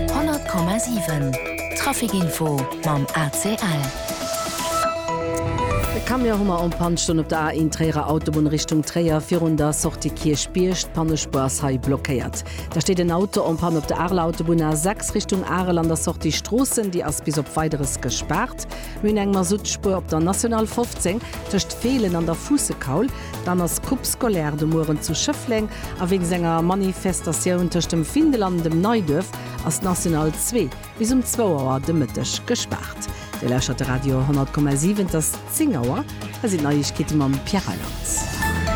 100,7 Traficinfo mam ACL. E Camion hu mer en Panne stoen op der A1 Tréierer Autobunn Richtung Tréier virun der Sortie Kierchbierg. D'Pannespur ass hei blockéiert. Da steet en Auto en Panne op der Areler Autobunn A6 Richtung Arel an der Sortie Stroossen. Déi ass bis op Weideres gespaart. Mir hunn eng Masuttspur op der National 15 tëscht Feelen an der Fuussekaul. Dann ass Coupe Scolaire de mueren zu Schëffleng a wéinst enger Manifestatioun tëscht dem Findel an dem Neiduerf ass d'National 2 bis um zwou Auer de Mëtteg gespaart. Dir lauschtert de Radio 100,7, et ass 10 Auer, hei sinn d'Neiegkeete mam Pierre Reyland.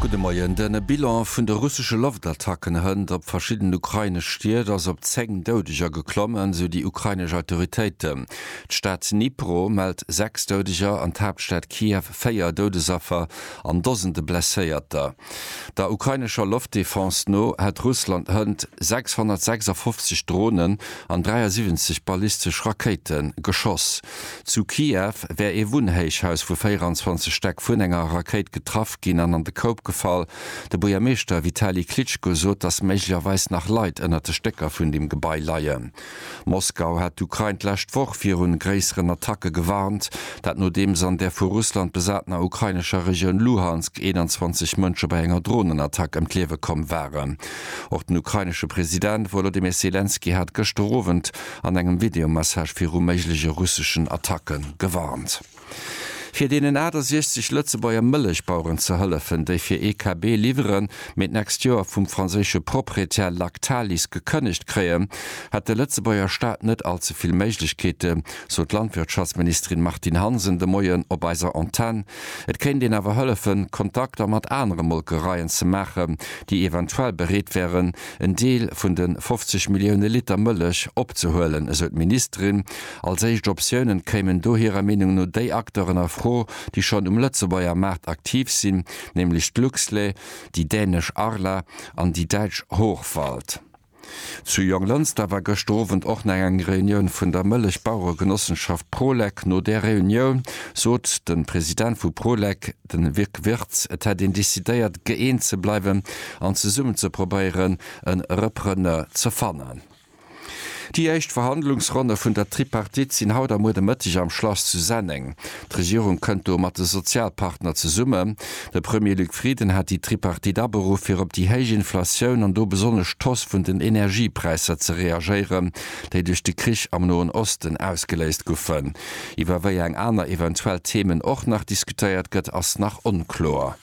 Gudde Moien. De Bilan vun de russesche Loftattacken hënt op verschidden ukrainesch Stied ass op 10 Doudeger geklomm, esou déi ukrainesch Autoritéiten. D'Stad Dnipro mellt 6 Doudeger an d'Haaptstad Kiew 4 Doudesaffer an Dosende Blesséierter. Der ukrainescher Loftdefense no hätt Russland hënt 656 Dronen an 73 ballistesch Rakéite geschoss. Zu Kiew wär ee Wunnhéichhaus vu 24 Stäck vun enger Rakéit getraff ginn an an de Koup gefall. De Buergermeeschter Vitali Klitschko sot, datt méiglecherweis nach Leit ënnert de Stécker vun dem Gebai leien. Moskau hat d'Ukrain d'lescht Woch viru gréisseren Attacke gewarnt. Dat nodeems an der vu Russland besatener ukrainescher Regioun Luhansk 21 Mënsche bei enger Dronenattack ëm d'Liewe komm waren. Och den ukrainesche President Wolodymyr Selenskyj hat gëschter Owend an engem Videomessage viru méiglege russeschen Attacke gewarnt. Fir deenen 68 Lëtzebuerger Mëllechbaueren ze hëllefen, déi fir ee KB liwweren, mee d'nächst Joer vum franséische Proprietär Lactalis gekënnegt kréien, hätt de Lëtzebuerger Staat net all ze vill Méiglechkeete, sot d'Landwirtschaftsministerin Martine Hansen de Moien op eiser Antenn. Et kéint een awer hëllefen, Kontakter mat anere Molkereien ze maachen, déi eventuell bereet wären, en Deel vun de 50 Millioune Liter Mëllech opzehuelen, esou d'Ministerin. Als éischt Optiounen kéimen do hirer Meenung no déi Acteuren a Fro, déi schonn um Lëtzebuerger Maart aktiv sinn, nämlech d'Luxlé, déi dänesch Arla an déi däitsch Hochwald. Zu Jonglënster war gëschter Owend och nach eng Reunioun vun der Mëllechbaueregenossenschaft Prolek. No där Reunioun sot de President vu Prolek, de Luc Wirtz, et hätt een decidéiert, gëeent ze bleiwen an zesummen ze probéieren, e Repreneur ze fannen. Déi éischt Verhandlungsronne vun der Tripartite sinn haut a muer de Mëtteg am Schlass zu Senneng. D'Regierung kënnt do mat de Sozialpartner zesummen. De Premier Luc Frieden hat déi Tripartite aberuff, fir op déi héich Inflatioun an do besonnesch d'Hausse vun den Energiepräisser ze reagéieren, déi duerch de Krich am Noen Osten ausgeléist goufen. Iwwer wéi eng aner eventuell Themen och nach diskutéiert gëtt, ass nach onkloer.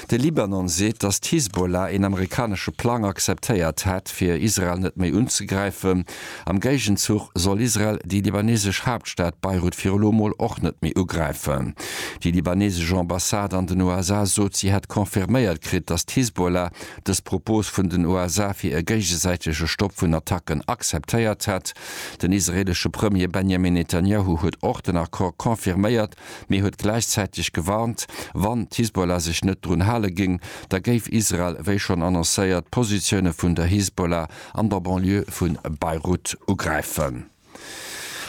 De Libanon seet, datt d'Hisbollah een amerikanesche Plang akzeptéiert hätt, fir Israel net méi unzegräifen. Am Géigenzuch soll Israel déi libanesesch Haaptstad Beirut fir elo mol och net méi ugräifen. Déi libanesesch Ambassade an den USA sot, si hätt confirméiert kritt, datt d'Hisbollah dës Propos vun den USA fir e géigesäitege Stopp vun Attacken akzeptéiert hätt. Den israeelesche Premier Benjamin Netanjahu huet och den Accord confirméiert, mee huet gläichzäiteg gewarnt, wann d'Hisbollah sech net drun hale géing, da géif Israel, wéi schonn annoncéiert, d'Positioune vun der Hisbollah an der Banlieue vu Beirut ugräifen.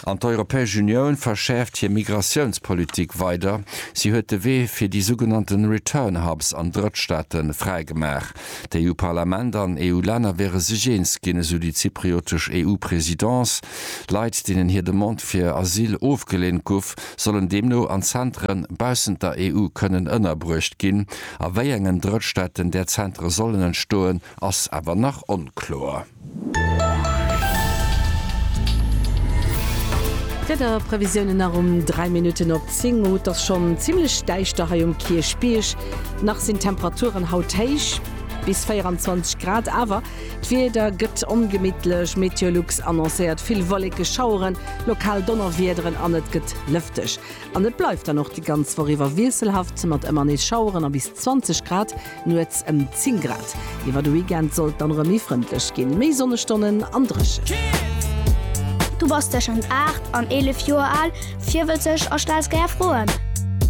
An d'Europäesch Unioun verschäerft hir Migratiounspolitik weider. Si huet de Wee fir déi sougenannte Return Hubs an Drëttstaate fräigemaach. D'EU-Parlament an EU-Länner wäre sech eens ginn, esou déi zypriotesch EU-Presidence. Leit, deenen hir Demande fir Asyl ofgeleent guff, sollen deemno an Zentere baussent der EU kënnen ënnerbruecht ginn. A wéi engen Drëttstaaten där Zentere sollen entstoen, ass awer nach onkloer. D'Wiederprevisiounen nach um 3 Minutten op 10 Auer. Et ass schonn zimmlech däischter hei um Kierchbierg. Nach sinn d'Temperaturen haut héich, bis 24 Grad, awer d'Wieder gëtt ongemittlech. Meteolux annoncéiert vill Wolleke, Schaueren, lokal Donnerwiederen an et gëtt lëfteg. An et bleift dann och déi ganz Woch iwwer wiesselhaft mat ëmmer nees Schaueren a bis 20 Grad Nuets ëm 10 Grad. Iwwer de Weekend sollt dann erëm méi frëndlech ginn, méi Sonnestonnen an Dréchent. Du bass tëschent 8 an 11 Joer al, virwëtzeg a stells gär Froen?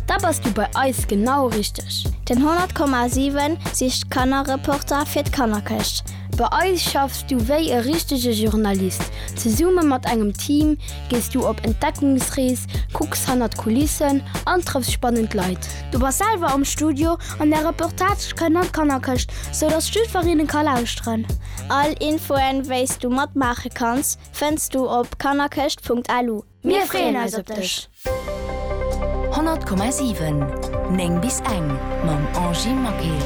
Da bass du bei eis genau richteg! Den 100,7 sicht Kannerreporter fir d'Kannerkëscht. Bei eis schaffs du wéi e richtege Journalist. Zesumme mat engem Team gees du op Entdeckungsrees, kucks hannert d'Kulissen an trëffs spannend Leit. Du bass selwer am Studio An der Reportage kënn an d'Kannerkëscht, sou dass d'Stüferinnen ka lauschteren. All Infoen wéis du matmaache kanns fënns du op kannerkëscht.lu. Mir freeën eis op dech! 100,7 9 bis eng mam Angie Maquet.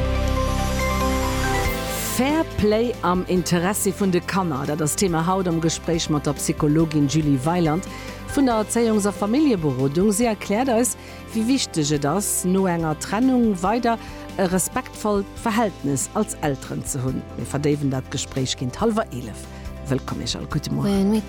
Fair Play am Interessi vun de Kanner, dat ass d'Thema haut am Gespréich mat der Psychologin Julie Weiland vun der Erzéiungs a Familljeberodung. Si erkläert eis, wéi wichteg et ass, no enger Trennung weider e respektvollt Verhältnes als Elteren ze hunn. Mir verdéiwen dat Gespréich géint hallwer 11. Wëllkomm Iech all. Gudde Mueren.